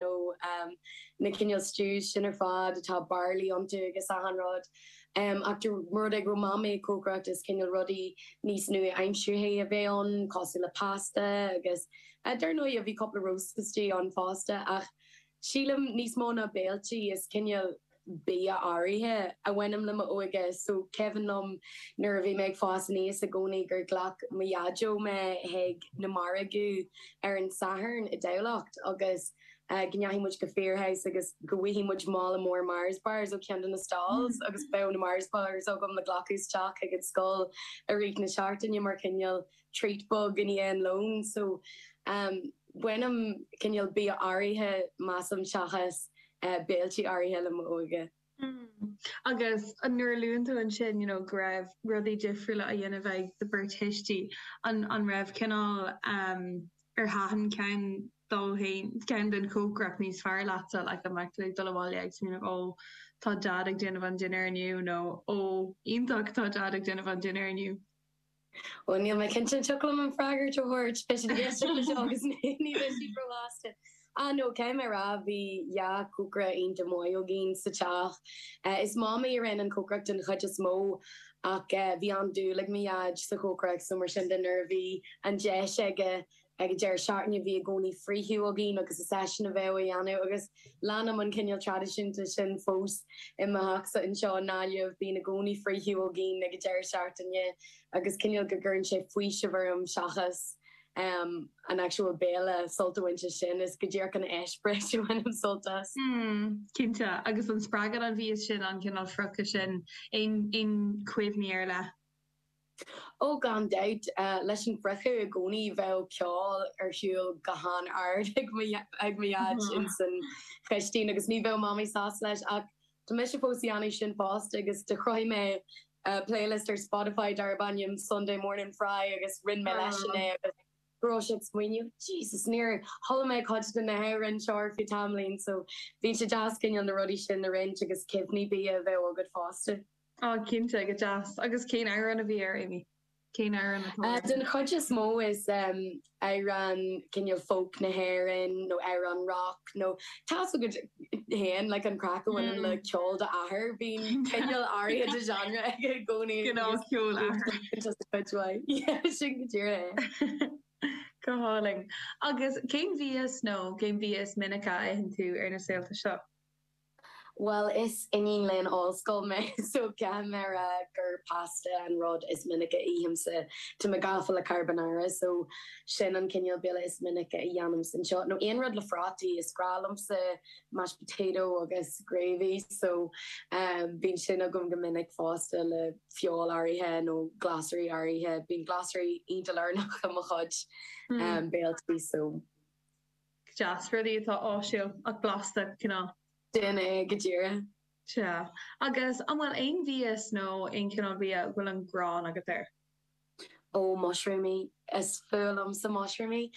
nó na cineál stews sin ar fad atá barley iontu agus achan rud ach de rud ag raibh Mamaí ag cócaireacht is cineál rudaí níos nua-aimsearthaí a bheadh ann cosúil le pasta agus dar ndóigh bhí cúpla roast tasty ann fosta ach sílim níos mó ná béiltí is cineál bia áirithe a bhaineann le m'óige. So cuimhin liom nuair a bhí mé ag fás aníos i gcónaí gur ghlac mo dhaideo mé chuig na margaidh ar an Satharn i dTamhlacht agus go ndeachaigh muid go Firhouse agus go bhfaigheadh muid mála mór Mars Bars ó cheann de na stalls agus bheadh na Mars Bars agam le glacadh isteach chuig an scoil i rith na seachtaine mar chineál treat beag i ndiaidh an lón so baineann cineál bia áirithe, measaim, seachas béiltí áirithe le m'óige. Mm, agus nuair a luann tú ansin, you know, go raibh rudaí difriúla á dhéanamh ag do bheirt thuismí, an, an raibh cineál, em, ar thaitin ceann dóibh, ceann den chócaireacht níos fearr leatsa, like an mbeadh tú ag dul abhaile ag smaoineamh ó tá Dad ag déanamh an dinnéar inniu nó ó iontach tá Dad ag déanamh an dinnéar inniu? Bhuel, níl mé cinnte, an dtiocfadh liom an freagra a thabhairt, beidh siad ag éisteacht leis seo agus ní bheidh siad róshásta. Ah no, caithfidh mé a rá, bhí dhá cócaire iontach maith againn sa teach. Is Mamaí a rinne an cócaireacht den chuid is mó ach bhí an-dúil ag mo Dhaid sa chócaireacht so mar sin de nuair a bhí an deis aige ag an deireadh seachtaine, bhí i gcónaí friochadh againn agus is eisean a bheadh á dhéanamh agus leanaim an cineál traidisiún sin fós i mo theachsa anseo i nGaillimh, bíonn i gcónaí friochadh againn ag an deireadh seachtaine agus cineál go gcuireann sé faoiseamh orm seachas em an actual béile sult a bhaint as sin, is go díreach an eispéireas a bhainim sult as. Hmm, cinnte agus an spreagann an bia sin an cineál friochadh sin, aon, aon chuimhní ar leith? Ó, gan dabht, leis an bhfriochadh i gcónaí bheadh ceol ar siúl go han-ard ag mo Dhaid ins an chistín agus ní bheadh Mamaí sásta leis ach tá mise fós ag déanamh sin fosta agus do chruthaigh mé playlist ar Spotify darb ainm Sunday Morning Fry agus roinn mé leisean é agus go raibh sé ag smaoineamh Jesus níor chuala mé cuid de na hamhráin seo ar feadh tamaillín so tá sé deas cineál na rudaí sin a roinnt agus cuimhní bia a bheith agat fosta. Oh cinnte, go deas. Agus cén amhrán a bhí air, Amy? Cén amhrán atá air? Den chuid is mó is amhráin cineál folk na hÉireann nó amhráin rock nó tá's agat féin like an craic a bhaineann le ceol d'athar, bíonn cineál áirithe de genre aige i gcónaí. Cineál ceol athar. Just a cuid mhaith. Yeah, sin go díreach é. Go hálainn. Agus cén bia is nó cén bia is minice a itheann tú ar na saolta seo? Bhuel, is iníon léinn ollscoil mé, so caithfidh mé a rá gur pasta an rud is minice a ithimse. Tá mé gafa le carbonara, so sin an cineál béile is minice a dhéanaimse anseo. Nó aon rud le prátaí, is grá liomsa mashed potato agus gravy, so bíonn sin agam go minic fosta le feoil áirithe nó glasraí áirithe. Bíonn glasraí iontach lárnach i mo chuid béiltí, so. deas, rudaí atá áisiúil ach blasta, cineál. Sin é go díreach. Sea. Agus an bhfuil aon mhias nó aon chineál bia a bhfuil an ghráin agat air? Ó, mushroomaí. Is fuath liomsa mushroomaí.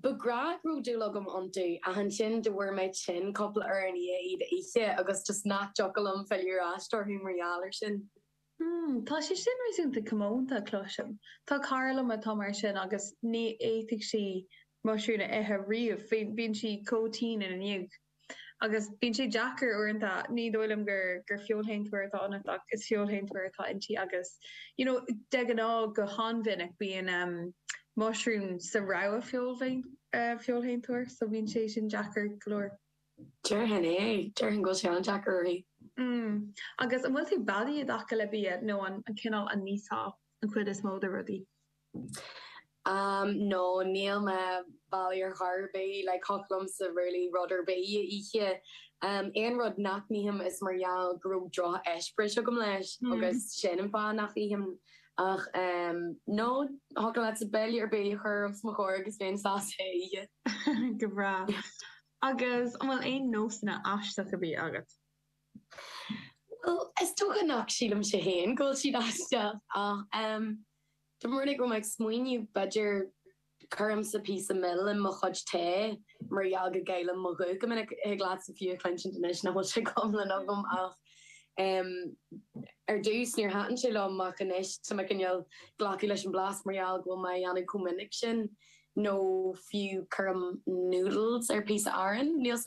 Ba ghnách go raibh dúil agam iontu ach ansin go bhfuair mé tinn cúpla uair i ndiaidh iad a ithe agus just nach dtiocfadh liom filleadh ar ais orthu mar gheall air sin. Hmm, tá sé sin réasúnta comónta, cloisim. Tá cara liom atá mar sin agus ní fhéadfadh sí muisiriún a ithe riamh, bíonn sí chomh tinn ina ndiaidh. Agus bíonn sé deacair uaireanta, ní dóigh liom gur gur feoilshéantóir atá ionat ach is feoilshéantóir atá inti agus you know de ghnáth, go han-mhinic bíonn ehm muisiriún sa rogha feoilshéantóir so bíonn sé sin deacair go leor. Déarfainn é. Déarfainn go bhfuil sé an-deacair uirthi. Mm. Agus an bhfuil tú beadaí i dtaca le bia nó an cineál a n-íosfá an chuid is mó de rudaí? Um, no, níl mé beadaí ar chor ar bith. Like, thiocfadh liomsa really rud ar bith a ithe. Um, aon rud nach n-ithim is mar gheall go raibh droch-eispéireas agam leis agus sin an fáth nach ithim Ach no, thiocfadh leatsa béile ar bith a chur os mo chomhair agus bheinn sásta é a ithe. Go breá. Agus an bhfuil aon nósanna aisteacha bídh agat? Bhuel, is dócha nach sílimse féin go bhfuil siad aisteach ach, dá mbeinn ag smaoineamh, b'fhéidir. Cuirimse píosa mil in mo chuid tae mar gheall go gcaillim mo ghuth go minic. Thig leatsa fiú a chluinsint anois nach bhfuil sé go hiomlán agam ach em ar dtús níor thaitin sé liom ach anois tá mé cineál glacadh leis an blas mar gheall go bhfuil mé a dhéanamh comh minic sin nó fiú cuirim noodles ar píosa aráin, níl 's